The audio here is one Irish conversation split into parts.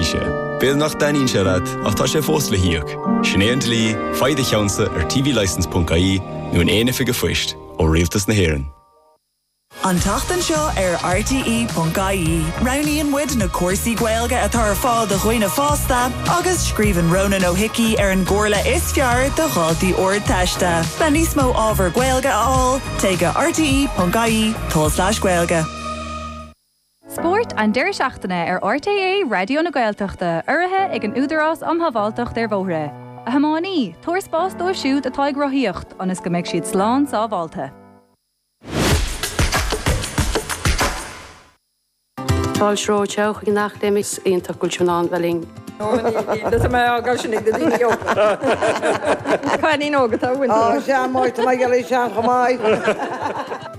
sé. B'fhéidir nach dtaitníonn sé leat, ach tá sé fós le híoc. Sin é an dlí, faigh do cheannsa ar tvlicense ponc ie nó in aon oifig an phoist, ó Rialtas na hÉireann. An tseachtain seo ar RTE ponc ie, roghnaíonn muid na cúrsaí Gaeilge atá ar fáil do dhaoine fásta agus scríobhann Rónán Ó hIcí ar an gcomhairle is fearr do dhaltaí Ardteiste. Le níos mó ábhar Gaeilge a fháil, téigh go rte ponc ie, tulslais gaeilge. Spórt an deiridh seachtaine ar RTÉ Raidió na Gaeltachta, urraithe ag an Údarás um Shábháilteacht ar Bhóithre. A thiománaí, tabhair spás dóibh siúd atá ag rothaíocht ionas go mbeidh siad slán sábháilte. Paul Schroth, Ciao chuig an Académie, is iontach go bhfuil sibh in ann bheith linn. Tá mé á gcur sin ag na daoine óga. Cailín óg atá uainn. Ó, sea, muid, tá mé ag éirí sean chomh maith!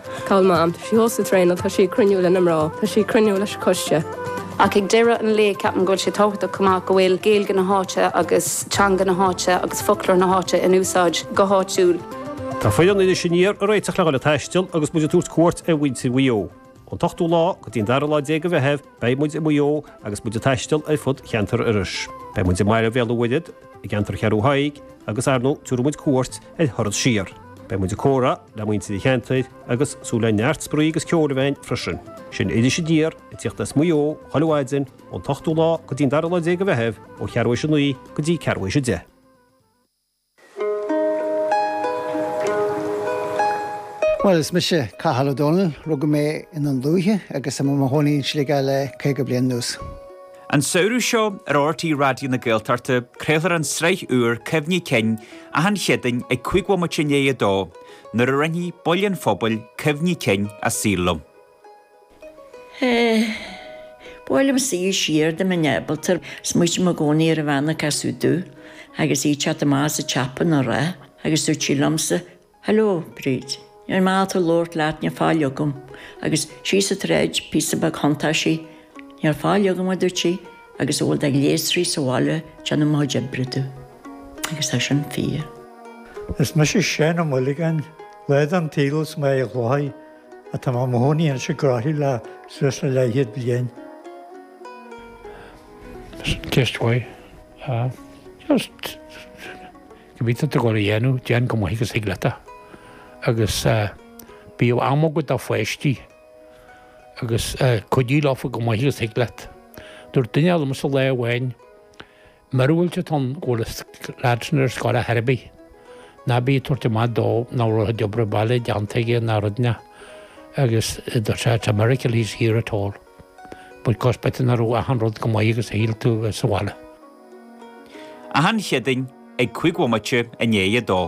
Cá bhfuil Mam. Tá sí thuas ag traenáil. Tá sí ag cruinniú leis na mná. Tá sí ag cruinniú leis an gcoiste. Ach ag deireadh an lae, ceapaim go bhfuil sé tábhachtach chomh maith go bhfuil Gaeilge na háite agus teanga na háite agus foclóir na háite in úsáid go háitiúil. Tá foireann Iris Aniar ag réiteach le dul ag taisteal agus muid ag tabhairt cuairt ar mhuintir Mhaigh Eo. Ón t-ochtú lá go dtí an dara lá déag de Mheitheamh, beidh muid i Maigh Eo agus muid ag taisteal ar fud cheantar Iorrais. Beidh muid i mBaile Bhéal an Mhuirthead, i gceantar Cheathrú Thaidhg agus, ar ndóigh, tabharfaidh muid cuairt Ar thuras siar, beidh muid ag comhrá le muintir an cheantair agus súil le neart spraoi agus ceoil a bheith ann freisin. Sin Iris Aniar, ag tíocht as Maigh Eo, chuile mhaidin, ón t-ochtú lá go dtí'n dara lá déag de Mheitheamh, ó cheathrú théis a naoi go dtí ceathrú théis a deich. Bhuel, is mise Cathal Ó Domhnaill, rugadh mé i nDún Lúiche agus tá mé i mo chónaí in Sligeach le caoga bliain anuas. An samhradh seo, ar RTÉ Raidió na Gaeltachta, craolfar an tsraith úr Cuimhní Cinn achan Chéadaoin ag 5 bhomaite i ndiaidh a dó, nuair a roinnfidh baill den phobal cuimhní cinn a saoil linn. Sea, buailim suas siar de mo neamhbalta, smaoiním i gcónaí ar an bhean a casadh domh, agus í te go maith sa tSeapain, a rá, agus dúirt sí liomsa, Hello, Bríd. Níl maith domh labhairt leat, níl faill agam. Agus shíos an tsráid, píosa beag thiontaigh sí, Níl faill agam, a dúirt sí, agus a bhfuil de ghléasraí sa bhaile déanamh mo chuid oibre domh. Agus tá sin fíor. Is mise Séamus Mac Géidigh, tá mé mo chónaí anois i gCroithlí le suas le leathchéad bliain. Ceist mhaith. Just. Cibé atá tú ag goil a dhéanamh, déan chomh maith agus a thig leat é. Agus bíodh am agat do pháistí agus cuidigh leo fá chomh maith agus a thig leat. Dúirt duine eile liomsa lá amháin, Mura bhfuil tú ach ann go bhfuil an leaid sin ar scoil ar chor ar bith, ná bí ag tabhairt amach dó nár rud é a obair baile déanta aige ná rud ná. Agus dúirt sé, It's a miracle he's here at all. Bhuel, cos bata ná raibh achan rud go maith agus shíl tú a bheith sa bhaile. Achan Chéadaoin ag cúig bhomaite i ndiaidh a dó.